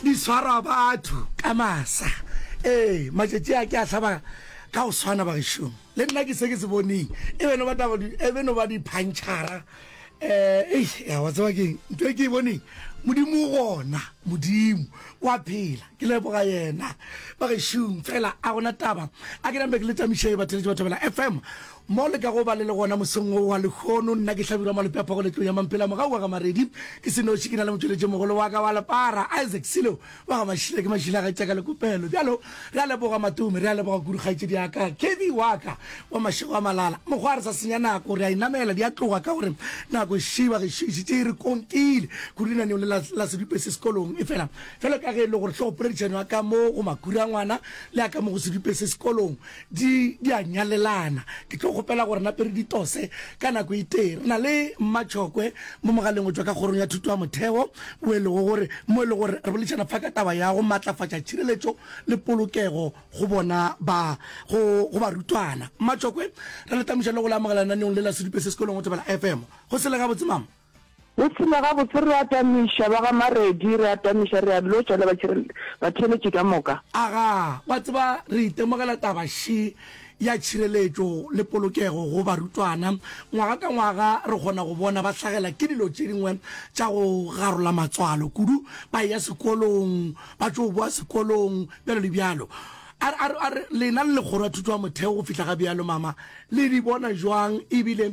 di swara batho ka masa ee matšatši a ke a hlaba ka go swana bagešong le nna ke se ke se boneng e beno ba taba di- e beno ba diphantšhara um ei ya wa tseba keng nto e ke e boneng modimo o gona modimo wa phela ke leboga yena bagešong fela a gona taba a ke nambe ke le tamišee bateletše ba thobela fm Mo le ka go ba le le gona mosong wo wa lehono, nna ke hlabirwa malope a phogo letlong ya Mampela mogau wa ga Maredi. Ke se noši, ke na le motšweletšimogolo wa ka wa lepara, Isaac Silo wa ga Mašila. Ke mašila a kgaetši ya ka Lekopelo. Bjalo, re a leboga Matome, re a leboga kudu kgaetšedi ya ka, Kevy wa ka wa mašego a malala. Mokgwa re sa senya nako, re a e namela, di a tloga ka gore nako e šiba gešo e šetše e re konkile kudu lenaneong le la, la Sedupese Sekolong. Efela, bjalo ka ge e le gore hlogopoledišano ya ka mo go Makhura ngwana le ya ka mo go Sedupese Sekolong di di a nyalelana ke tlo kgopela gore nape re di tose ka nako e tee re na le mmatšhokwe mo mogaleng go tšwa ka kgorong ya thuto ya motheo o e lego gore mo e le gore re boledišana fa ka taba ya go maatlafatša tšhireletšo le polokego go bona ba go go barutwana mmatšhokwe re le tamoša le go le amogela lenaneong le la sedupe se sekolong go tebela fm go se le gabotse mama Re tshela gabotse, re atamiša ba ga Maredi, re atamiša, re a lotšwa le batheeletši ka moka. Aga, wa tseba, re itemogela taba še ya tšhireletšo le polokego go barutwana. Ngwaga ka ngwaga re kgona go bona ba hlagela ke dilo tše dingwe tša go garola matswalo kudu, ba eya sekolong, ba tšo boa sekolong, bjalo le bjalo. A, a, a, lena le Lekgoro ya Thuto ya Motheo go fihla ga bjalo, mama, le di bona bjang, e bile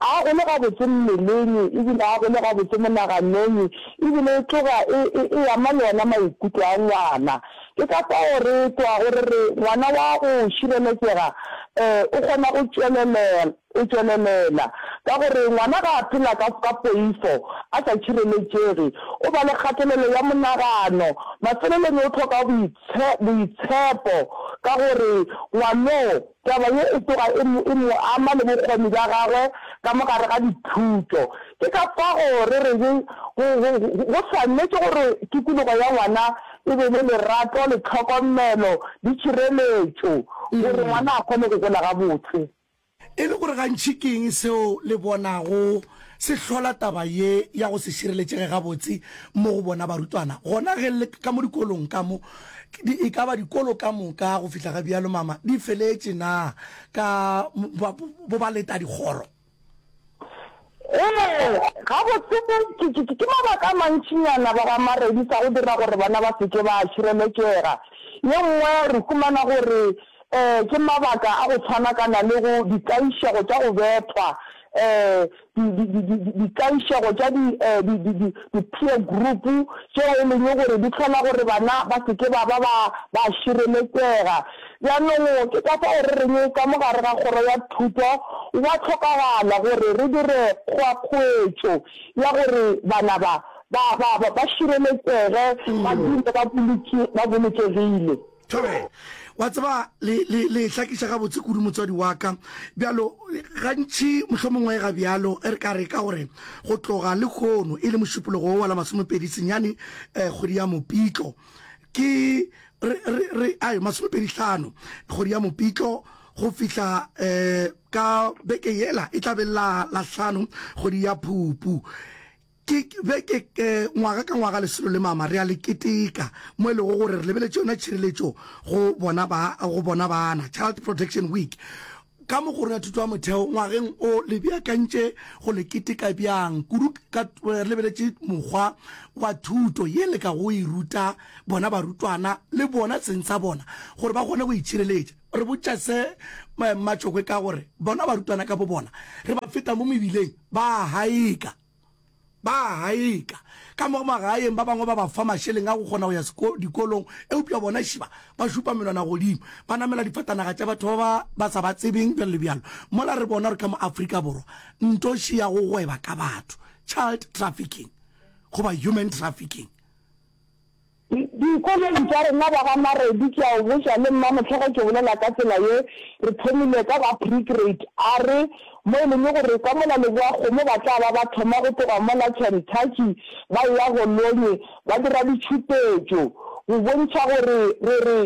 A go le gabotse mmeleng, e bile a go le gabotse monaganong, e bile e tloga e, e, e ama le ona maikutlo a ngwana. Ke ka fao re tlogago re re, Ngwana wa go šireletšega, ee, o kgona go tšwelelela, go tšwelelela. Ka gore ngwana ga a phela ka, ka poifo, a sa tšhireletšege, o ba le kgatelelo ya monagano. Mafelelong o hloka boitshe, boitshepo, ka gore ngwanoo, Taba ye e tsoga e mo, e mo ama le bokgoni bja gagwe ka mo gare ga dithuto. Ke ka fao re re ge, go, go, go, go swanetše gore tikologo ya ngwana e be le lerato le tlhokomelo le tšhireletšo gore ngwana a kgone go gola gabotse. E le gore gantši ke eng seo le bonago se hlola taba ye ya go se šireletšege gabotse mo go bona barutwana, gona ge le, ka mo dikolong ka mo, Di, e ka ba dikolo ka moka go fihla ga bjalo, mama, di feletše na ka ba, bo ba leta dikgoro? Ee, gabotse, ke, ke, ke, ke mabaka a mantšinyana ba ba maredisa go dira gore bana ba se ke ba šireletšega. Ye nngwe re humana gore um ke mabaka a go tshwanakana le go, ditlaišego tša go bethwa, um dikaišego tša di-peer group tšeo e leng gore di hlola gore bana ba se ke ba ba ba šireletsega. Bjanong ke ka fao re reng ka mo gare ga kgoro ya thuto gwa hlokagala gore re dire kgoakgoetšo ya gore bana ba ba ba ba šireletsege ba dule ba bolokegile. Thobela. Wa tseba, le, le, le hlakiša gabotse kudu, motswadi wa ka. Bjalo, gantši mohlomongwe ga bjalo, e re ka re, ka gore go tloga lehono, e le mošupologo wo wa la masomepedi senyane, eh, kgwedi ya Mopitlo, ke, re, re, re, ai, masomepedi hlano, kgwedi ya Mopitlo, go fihla, eh, ka beke yela e tla be la, la hlano, kgwedi ya Phupu. Ke be ke, ngwaga ka ngwaga, lesolo le mama re a le keteka, mo e lego gore re lebeletše yona tšhireletšo go bona ba, go bona bana, Child Protection Week. Ka mo Kgorong ya Thuto ya Motheo ngwageng o, le beakantše go le keteka bjang kudu ka re lebeletše mokgwa wa thuto ye le ka go e ruta bona barutwana le bona seng sa bona gore ba kgone go itšhireletša? Re botša se Mmatšokwe ka gore bona barutwana ka bobona re ba feta mo mebileng ba a haeka. ba a gaeka ka mo magaeng ba bangwe ba ba fa mašeleng a go kgona go ya dikolong eupša bona šiba ba šupa menwana godimo ba namela difatanaga tša batho ba ba ba sa ba tsebeng bjalo le bjalo mola re bona gore ka mo afrika borwa ntoši ya go gweba ka batho child trafficking goba human trafficking Dikolong tša rena ba ga Maredi ke a o botša le nna mohla ge ke bolela ka tsela ye re thomile ka ba pregrade a re mo e leng gore ka mola Leboakgomo ba tla ba ba thoma go tloga mola Kentucky ba eya go Lonyi ba dira ditšhupetšo go bontšha gore re re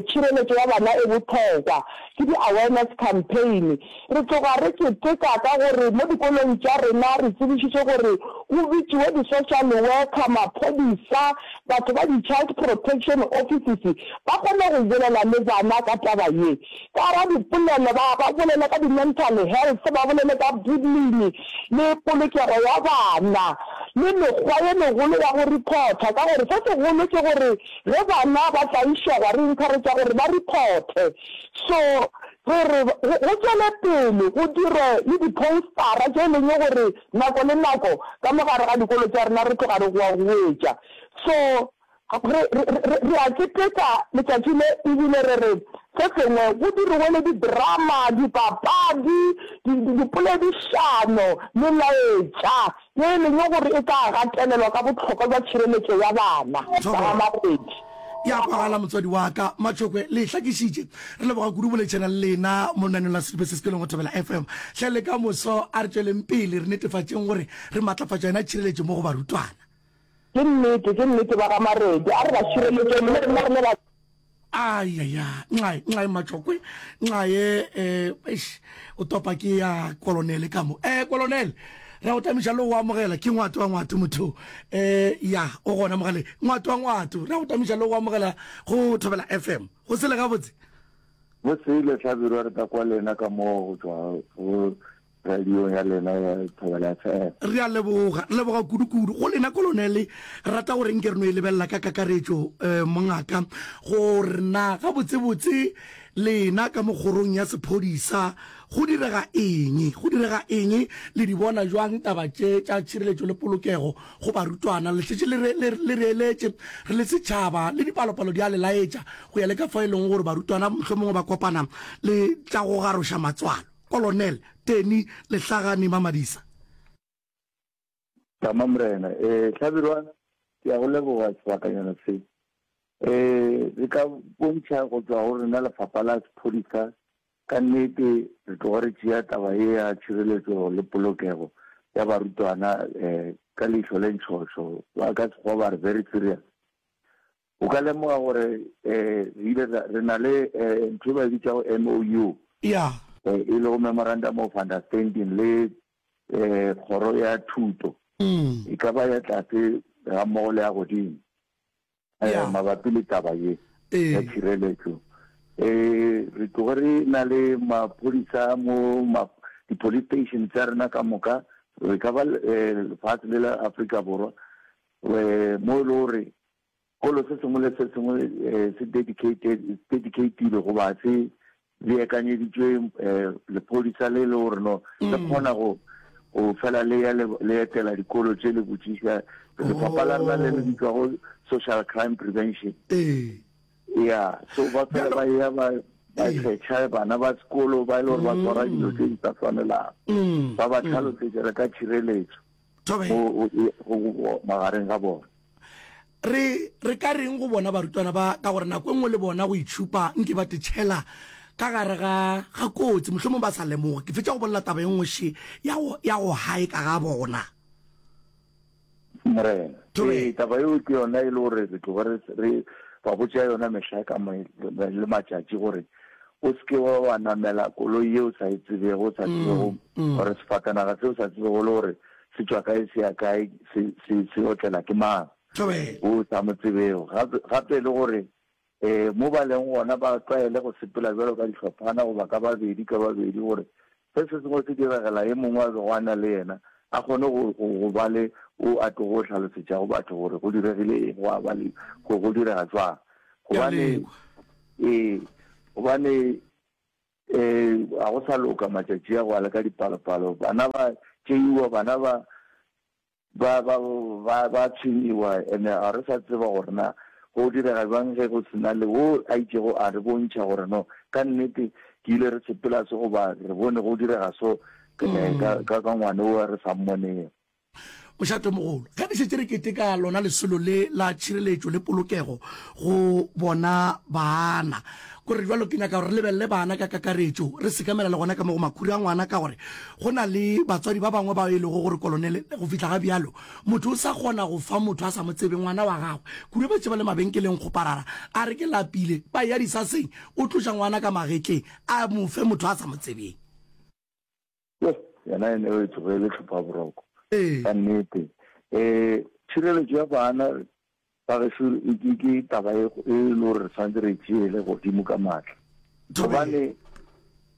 tšhireletšo ya bana e bohlokwa ke di awareness campaign Re tloga re keteka ka gore mo dikolong tša rena re tsebišitšwe gore go bitšiwe di-social worker, maphodisa, batho ba di-child protection offices ba kgone go bolela le bana ka taba ye. Ka radipolelo ba ba bolele ka di-mental health, ba bolele ka bullying le polokego ya bana le mekgwa ye megolo ya go reporter ka gore se segolo ke gore ge bana ba tlaišegwa re encourager gore ba reporte. So Gore go tšwele pele go dirwe le diphoustara tše e leng gore nako le nako ka mo gare ga dikolo tša rena re tloga re goa go wetša. So re, re, re a keteka letšatši le ebile re re se sengwe go diriwe le didrama, dipapadi, di, di, dipoledišano, melaetša yo e lego gore e ka gatelelwa ka bohlokwa bja tšhireletšo ya bana ba ga Makgwedi. Ya kwagala motswadi wa ka Matšhokwe le e hlakišitše re leboga kudu boletšhana le lena mo lenaneong la sedupe se se pelong go Thobela FM hle le ka moso a re tšweleng pele re netefatšeng gore re matlafatša yona tšhireletšo mo go barutwana. Ke nnete, ke nnete, ba ga Maredi. A re ba šireletšeng, le rena re ne ba. Ayaya, nxae, nxae Matšokwe, nxae, eh, eish, o topa ke ya Kolonele ka mo. Eh, Kolonele, re a go tamiša le go amogela, ke Ngwato wa Ngwato motho o. Eh, ya, o gona mogaleng. Ngwato wa Ngwato, re a go tamiša le go amogela go Thobela FM. Go sele gabotse? Go sele, Hlabirwa, re tla kwa le yena ka mo go tšwa go Radiong ya lena ya Thobela FM. Re a leboga, re leboga kudu-kudu go lena Kolonele. Rata gore nke re no e lebelela ka kakaretšo, um, mongaka, gore na gabotse-botse lena ka mo kgorong ya sephodisa go direga eng, go direga eng, le di bona bjang taba tše tša tšhireletšo le polokego go barutwana. Le šetše le re, le, le re eletše, re le setšhaba, le dipalopalo di a le laetša, go ya le ka fao e lego gore barutwana mohlomongwe ba kopana le tša go garoša matswalo. Kolonel Tenny Lehlagane Mamadisa. Tama Morena. E, Hlabirwa, ke ya go leboga sebakanyana se. E, re ka bontšha go tšwa go rena lefapha la sephodisa, ka nnete re tloga re tšea taba ye ya tšhireletso le polokego ya barutwana e, ka leihlo le ntšhošo. Ba ka Sekgowa ba re very serious. O ka lemoga gore re ile ra, re na le ntho e ba e bitšago MOU, Yeah. e lego Memorandum of Understanding, le Kgoro ya Thuto, e ka ba ya tlase gammogo le ya godimo, Yeah. mabapi le taba ye Ee. ya tšhireletšo. Re tloge re na le maphodisa mo ma, di-police station tša rena ka moka, e ka ba lefase le la Afrika Borwa, mo e le gore Sekolo se sengwe le se sengwe se dedicated, it's dedicated goba se beakanyeditšwe lephodisa le le gore no le kgona go go fela le ya le etela dikolo tše le botšiša lefapha la rena le le bitšwa go social crime prevention ee ya so ba fela ba ya ba ba kgetha bana ba sekolo ba ile gore ba tswara dilo tse di sa tshwanelang ba ba tlhalosetsa ka tshireletso magareng ga bona re re ka reng go bona barutwana ba ka gore nako e nngwe le bona go itšhupa nke ba tetšhela ka gare ga ga kotsi mohlomong ba sa lemoge ke fetša go bolela taba e nngwe she ya go gae ka ga bona morena ee taba eo ke yona e le gore re tloga re ba botša yona mehla ka le matšatši gore O se ke wa wa namela koloi ye o sa e tsebego, o sa tsebego gore sefatanaga se o sa tsebego le gore se tšwa kae se ya kae, se, se, se otlela ke mang o sa mo tsebego. Gape, gape le gore um mo ba leng gona ba tlwaele go sepela bjalo ka dihlophana goba ka babedi ka babedi gore Ge se sengwe se diragela ye mongwe a bego a na le yena, a kgone go, go, go ba le o a tlogo go hlalosetšago batho gore go diregile eng, gwa ba le, go, go direga jwang. Gobane, ee, gobane ee, ga go sa loka matšatši a go a le ka dipalopalo. Bana ba tšeiwa, bana ba, Ba ba ba ba tshwenyiwa and ga re sa tseba gore na go direga bjang ge go sena le wo a itšego a re bontšha gore no ka nnete ke ile re sepela se goba re bone go direga so ka ka ka ngwane wo re sa mmonego. Mošatomogolo, ge re šetše re keteka lona lesolo le la tšhireletšo le polokego go bona baana, Go re bjalo, ke nyaka gore re lebelele bana ka kakaretšo, re sekamela le gona ka mo go makhura a ngwana, ka gore go na le batswadi ba bangwe bao e lego gore kolonele, go fihla ga bjalo, motho o sa kgona go fa motho a sa mo tsebe ngwana wa gagwe. Kure ba tše ba le mabenkeleng kgoparara, a re ke lapile, ba eya disaseng, o tloša ngwana ka magetleng, a mo fe motho a sa mo tsebeng. Yoh, yena e ne e tsoge e le tlhophaboroko. Ka nnete, um tšhireletšo ya bana ba geso ke taba e e le gore re tshwanetse re e tšeele godimo ka maatla, gobane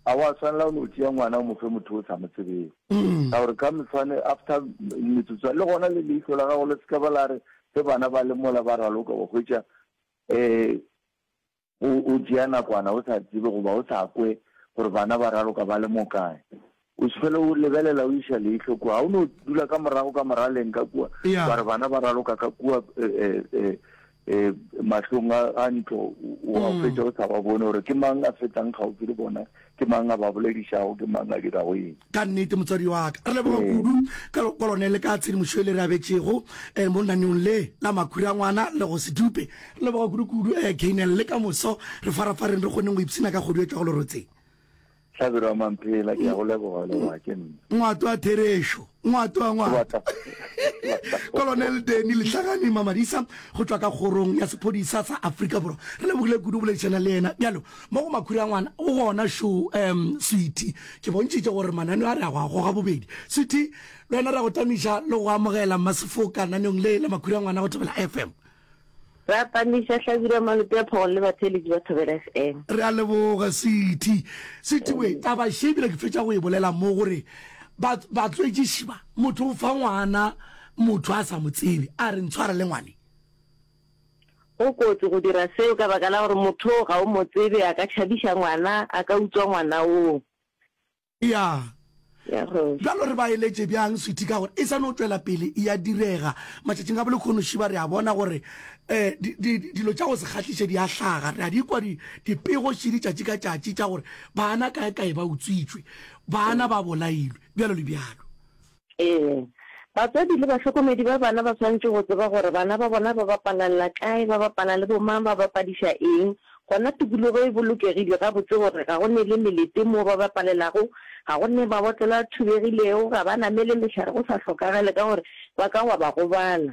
a wa tshwanela o no tšea ngwana o mo fe motho o sa mo tsebeng, mm. ka gore ka mefane after metsotswana le gona le leihlo la gago le seka ba la re ge bana ba le mola ba raloka wa hwetša um o, o tšea nakwana o sa tsebe goba o sa kwe gore bana ba raloka ba le mokae. O se fele o lebelela o iša leihlo kua. Ga o no dula ka morago ka moraleng ka kua, Yeah. wa re bana ba raloka ka kua e, e, e, e, mahlong a, a ntlo, o a fetša o sa ba bone gore ke mang a fetang kgauswi le bona. Ke mang a ba boledišago? Ke mang a dirago eng? Ka nnete, motswadi wa ka, re leboga kudu ka lekwalo ne le ka tshedimošo ye le re abetšego mo lenaneong le la Makhura Ngwana le go se dupe. Re leboga kudukudu Gaynell le ka moso re farafareng re kgoneng go ipshina ka kgodu e tšwago lerotseng. Hlabirwa Mamphela, ke a go leboga le wa ke nna. Ngwato a Therešo, Ngwato a Ngwata. Kolonel Denny Lehlagane Mamadisa go tšwa ka kgorong ya sephodisa sa Afrika Borwa. Re lebogile kudu go boledišana le yena. Bjalo Mo go makhura ngwana o gona šo um sweetie ke bontšhitše gore mananeo a re a go a goga bobedi sweetie le wena re a go tamiša le go amogela mmasefoka naneong le la makhura ngwana go thobela fm Re a tamiša hlabirwa malope a phogolo le batheeletši ba thobela fm. Re a leboga sweetie sweetie we taba še ebile ke fetša go e bolela mo gore ba batswetšiši ba motho o fa ngwana motho a sa mo tsebe a re ntshware le ngwane Go kotsi go dira seo ka baka la gore motho oo ga o mo tsebe, a ka tšhabiša ngwana, a ka utswa ngwana oo. Ya. Ya go. Bjalo re ba eletše bjang, sweetie, ka gore e sa no tšwela pele e ya direga. Matšatšing a bolekhono šiba re a bona gore um di, di, dilo tša go se kgahliše di a hlaga. Re a di kwa di, dipego šidi tšatši ka tšatši tša gore baana kae-kae ba utswitšwe, baana ba bolailwe, bjalo le bjalo. Ee, batswadi le bahlokomedi ba bana ba swanetše go tseba gore bana ba bona ba bapalela kae, ba bapala le bomang, ba bapadiša eng. Gona tikologo e bolokegile gabotse gore ga go ne le melete moo ba bapalelago, ga go ne mabotlelo a thubegilego, ga ba namele mehlare go sa hlokagale ka gore ba ka wa ba gobala.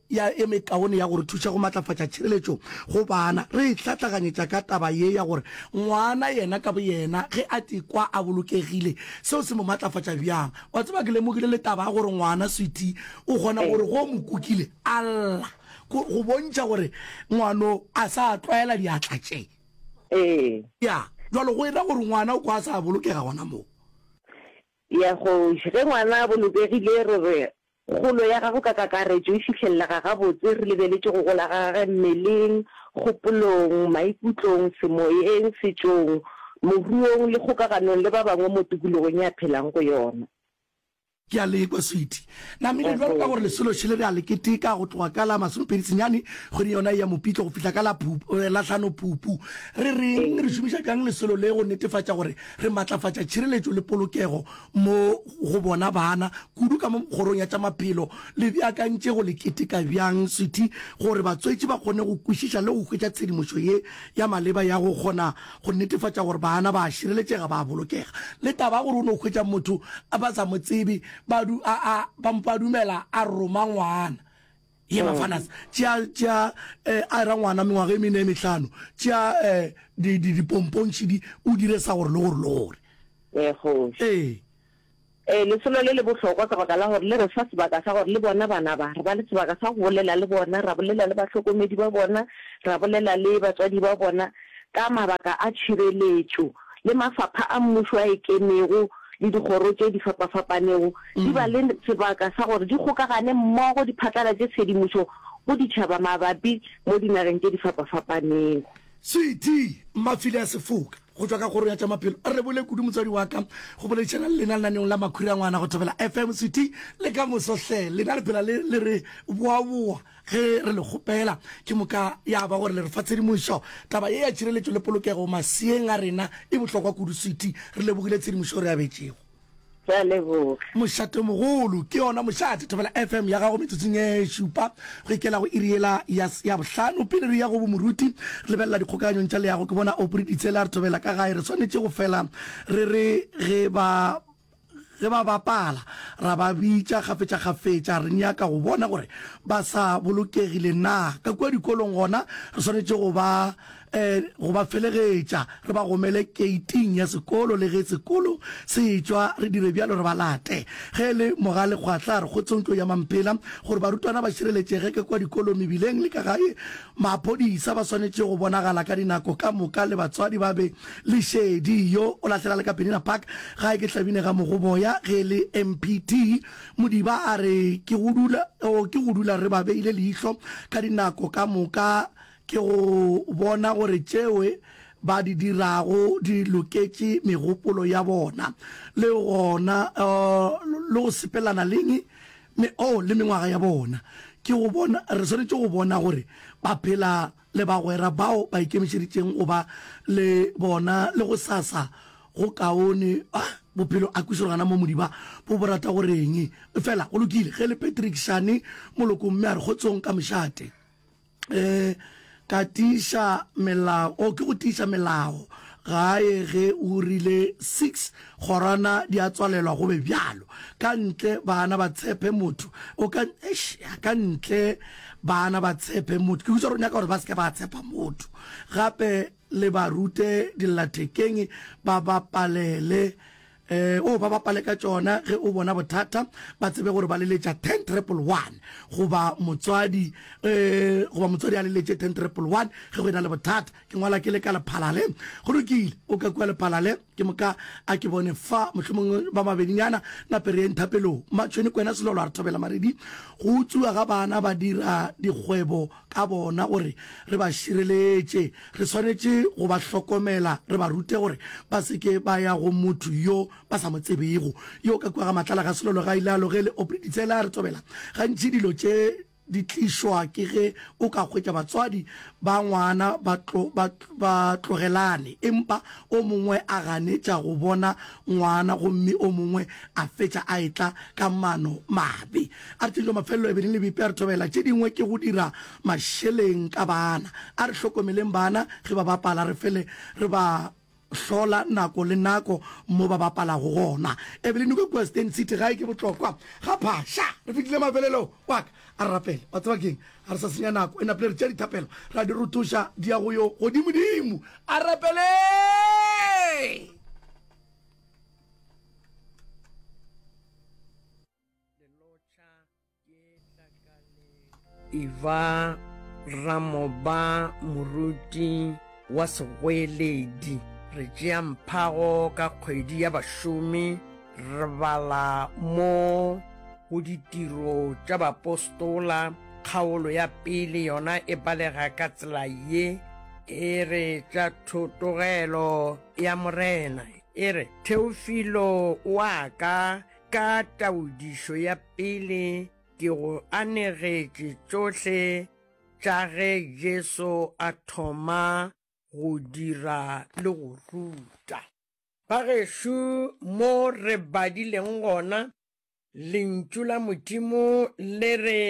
ya e mekaone ya go re thuša go matlafatša tšhireletšo go bana. Re e hlatlaganyetša ka taba ye ya gore ngwana yena ka boyena ge a ikwa a bolokegile, seo se mo matlafatša bjang. Wa tseba, ke lemogile le taba ya gore ngwana, sweetie, o kgona gore ge o mo kukile a lla, go bontšha gore ngwano a sa tlwaela diatla tše. Ee. Ya, bjalo go e ra gore ngwana o kwa a sa bolokega gona moo. Ya, kgoši, ge ngwana a bolokegile re re Kgolo ya gagwe ka kakaretšo e fihlelega gabotse re lebeletše go gola ga gagwe mmeleng, kgopolong, maikutlong, semoyeng, setšong, moruong le kgokaganong le ba bangwe mo tikologong ye a phelang go yona. Ke a le kwa, sweetie. Namile, bjalo ka gore lesolo šele re a le keteka go tloga ka la masomepedi senyane kgweding yona ye ya Mopitlo go fihla ka la Lahlano Phupu. Re reng? Re šomiša bjang lesolo le go netefatša gore re matlafatša tšhireletšo le polokego mo go bona bana kudu ka mo kgorong ya tša maphelo le beakantše go le keteka bjang sethy gore batswetši ba kgone go kwešiša le go hwetša tshedimošo ye ya maleba ya go kgona go netefatša gore bana ba a šireletšega ba a bolokega le taba ya gore o no hwetša motho a ba sa mo tsebe ba du a a ba mpa dumela a roma ngwana ye bafanas tšea tšea eh, a ra ngwana mengwaga e mene e mehlano tšea eh, di di di pompontšhidi o dire sa gore le gore le gore ee kgoši ee ee lesolo le le bohlokwa ka baka la gore le re fa sebaka sa gore le bona bana ba re ba le sebaka sa go bolela le bona ra bolela le bahlokomedi ba bona ra bolela le batswadi ba bona ka mabaka a tšhireletšo le mafapha a mmušo a ikemego le dikgoro tše di fapafapanego di ba le sebaka sa gore di kgokagane mmogo di phatlalatše tshedimošo go ditšhaba mabapi mo dinageng tše di fapafapanego. Sweety Mafile a Sefoka go tšwa ka kgoro ya tša maphelo a rebole kudu motswadi wa ka go boledišana le lena lenaneong la Makhura Ngwana go Thobela FM. Sweety le ka moso hle lena le phela le re boaboa. Ge re le kgopela, ke moka ya ba gore le re fa tshedimošo. Taba ye ya tšhireletšo le polokego maseeng a rena e bohlokwa kudu, Sweety. Re lebogile tshedimošo e re abetšego. Ke a leboga. Mošatemogolo, ke yona Mošate Thobela FM ya gago metsotsong e šupa go ikela go iri yela ya s- ya bohlano. Pele re ya go bomoruti, re lebelela dikgokaganyong tša leago. Ke bona Aubrey Ditsela a re thobela ka gae. Re swanetše go fela re re ge ba Ge ba bapala, ra ba bitša kgafetšakgafetša. Re nyaka go bona gore ba sa bolokegile na ka kua dikolong. Gona re swanetše go ba, eh, go ba felegetša, re ba gomele keiting ya sekolo. Le ge sekolo se etšwa, re dire bjalo, re ba late. Ge e le Mogalekgwatla, a re kgotsong tlo ya Mampela gore barutwana ba šireletšege ka kua dikolong, mebileng le ka gae. Maphodisa ba swanetše go bonagala ka dinako ka moka le batswadi ba be le šedi. Yo o lahlela le ka Penina Park gae ke Hlabine ga Mogoboya ge le MPT. Modiba a re ke go dula, oh, ke go dula re ba beile leihlo ka dinako ka moka ke go bona gore tšewe ba di dirago di loketše megopolo ya bona le gona, oh, le go sepelelana leng Me, oh, le mengwaga ya bona. Ke go bona, re swanetše go bona gore ba phela, le bagwera bao ba ikemišeditšeng go ba le bona, le go sasa go kaone. Ah, bophelo a kwešigo gana moo modiba bo bo rata gore eng. Efela, go lokile, ge le Patrick šane molokong mme a re, Kgotsong ka mošate. Ge ka tiiša melao, oh, ke go tiiša melao gae ge o rile six kgorwana di a tswalelwa go be bjalo, ka ntle bana ba tshepe motho o ka, eish, ya, ka ntle bana ba tshepe motho, ke hutša re nyaka gore ba se ke ba tshepa motho, gape le ba rute dillathekeng ba ba palele Ee, o ba bapale ka tšona ge o bona bothata, ba tsebe gore ba leletša 10 triple one goba motswadi eh, goba motswadi a leletše 10 triple one ge go e na le bothata. Ke ngwala ke le ka lephalale, go lokile, o ka kua lephalale, ke moka a ke bone fa mohlomongwe ba mabedinyana na pereyeng thapelong. Matšhweni kwena Selolo a re thobela maredi, go utswiwa ga bana ba dira dikgwebo ka bona gore re ba šireletše, re swanetše go ba hlokomela, re ba rute gore ba se ke ba ya go motho yo ba sa mo tsebego. Yo ka kua ga Matlala ga Selolo ga a ile a lo ge le opile ditshele a re tobela. Gantši dilo tše di tlišwa ke ge o ka hwetša batswadi ba ngwana ba tlo, ba, ba tlogelane empa o mongwe a ganetša go bona ngwana gomme o mongwe a fetša a etla ka mano mabe. A re tše dilo mafelelo e be di le bipea re thobela tše dingwe ke go dira mašeleng ka bana. A re hlokomeleng bana ge ba bapala re fele re ba hlola nako le nako mo ba bapalago gona. Evelyn Oko kua Stan City gae ke botlokwa ga phaša. Re fetile mafelelong wa ka. A re rapele. Wa tseba ke'ng? A re sa senya nako e napile re tšea dithapelo ra di rothoša di ya go yo godimodimo. A rapeleng! Eba ramoba moruti wa segweeledi re tšea mphago ka kgwedi ya bašomi re bala mo go ditiro tša bapostola kgaolo ya pele yona e balega ka tsela ye e re tša thotogelo ya morena e re theofilo wa ka Ka taodišo ya pele ke go anegetše tšohle tša ge Jesu a thoma go dira le go ruta. Bagešo, mo re badileng gona, Lentšu la Modimo le re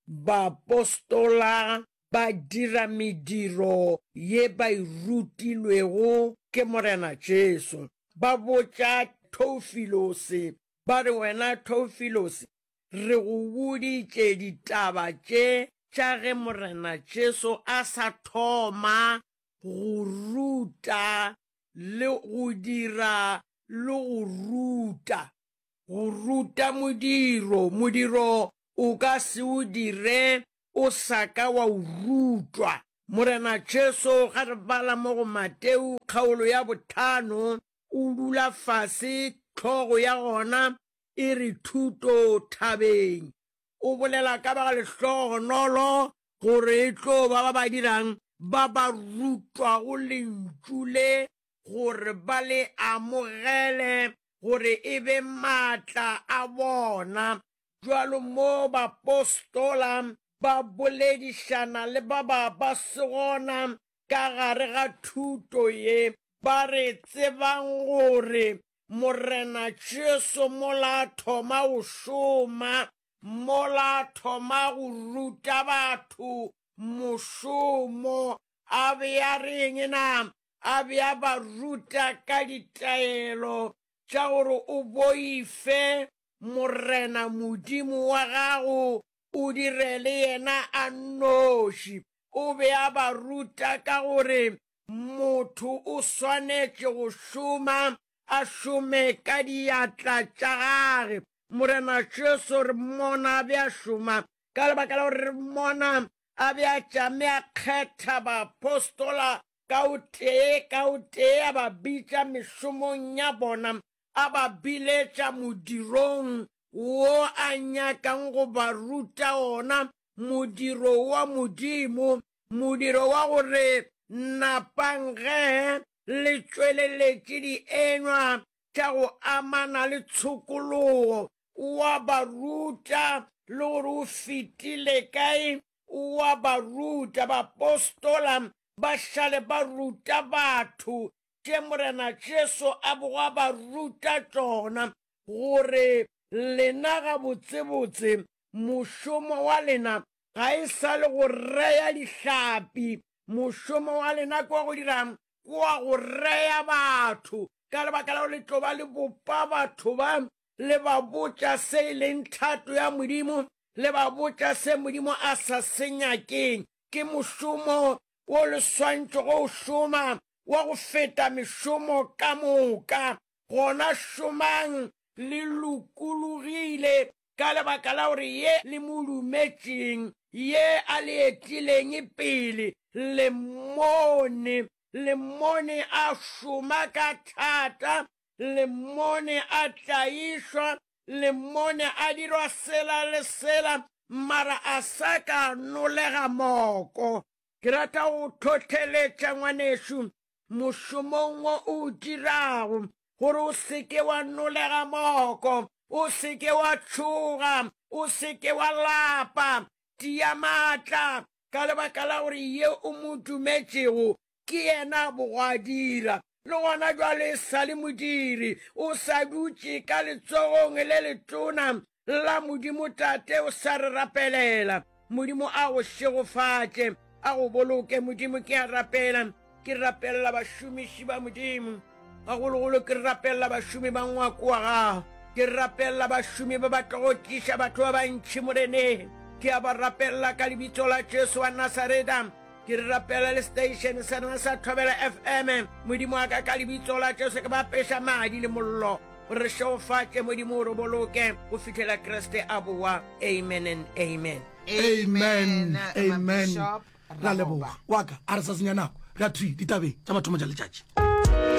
Baapostola ba dira mediro ye ba e rutilwego ke Morena Jesu. Ba botša Theufilosi ba re, Wena Theufilosi, re go boditše ditaba tše tša ge Morena Jesu a sa thoma go ruta le go dira le go ruta, go ruta modiro, modiro o ka se o dire o sa ka wa o rutwa. Morena Jesu, ga re bala mo go Mateu kgaolo ya bothano, o dula fase, tlhogo ya gona e re Thuto Thabeng. O bolela ka ba lehlogonolo gore e tlo ba ba ba dirang, ba ba rutwago Lentšu le, gore ba le amogele, gore e be maatla a bona, Bjalo mo bapostola ba boledišana le ba ba ba se gona ka gare ga thuto ye, ba re, Tsebang gore Morena Jesu mola a thoma go šoma, mola a thoma go ruta batho mošomo, a be a re'ng na? A be a ba ruta ka ditaelo tša gore o boife, Morena Modimo wa gago o direle yena a nnoši. O be a ba ruta ka gore motho o swanetše go šoma, a šome ka diatla tša gage. Morena Jesu re mmona a be a šoma ka lebaka la gore re mmona a be a tšame a kgetha baapostola ka o tee ka o tee, a ba bitša mešomong ya bona, a ba biletša modirong wo a nyakang go ba ruta ona, modiro wa Modimo, modiro wa gore napang ge le tšweleletše dienywa tša go amana le tshokologo. O a ba ruta, le gore o fetile kae, o a ba ruta. Baapostola ba šale ba ruta batho tše Morena Jesu a bego a ba ruta tšona, gore lena gabotsebotse mošomo wa lena ga e sa le go rea dihlapi, mošomo wa lena ke wa go dira'ng? Ke wa go rea batho, ka lebaka la gore le tlo ba le bopa batho ba, le ba botša se e leng thato ya Modimo, le ba botša se Modimo a sa se nyakeng. Ke mošomo wo le swantšwe go o šoma wa go feta mešomo ka moka. Gona šomang le lokologile ka lebaka la gore ye le mo lumetšeng, ye a le etileng pele, le mmone. Le mmone a šoma ka thata, le mmone a tlaišwa le mmone a dirwa sela le sela, mara a sa ka nolega moko. Ke rata go hlohleletša ngwanešu mošomong wo o o dirago, gore o se ke wa nolega moko, o se ke wa tšhoga, o se ke wa lapa. Tia maatla, ka lebaka la gore ye o mo dumetšego Ke yena bogwadira, le gona jwale e sa le modiri. O sa dutše ka letsogong le letona la Modimo Tate, o sa re rapelela. Modimo a go šegofatše, a go boloke. Modimo, ke a rapela, ke rapelela bašomiši ba Modimo. gagologolo ke rapelela bašomi ba ngwako wa gago ke rapelela bašomi ba batla go tliša batho ba bantšhi moreneng ke a ba rapelela ka lebitso la jesu wa nasareta ke re rapela le station sa rena sa thobela fm modimo wa ka ka lebitso la jesu ke ba peša madi le mollo gore re šegofatše modimo o re boloke go fitlhela kriste a boa amen and amen amen amen ra leboga waka a re sa senya nako re a thwi ditabeng tša mathomo tša letšatši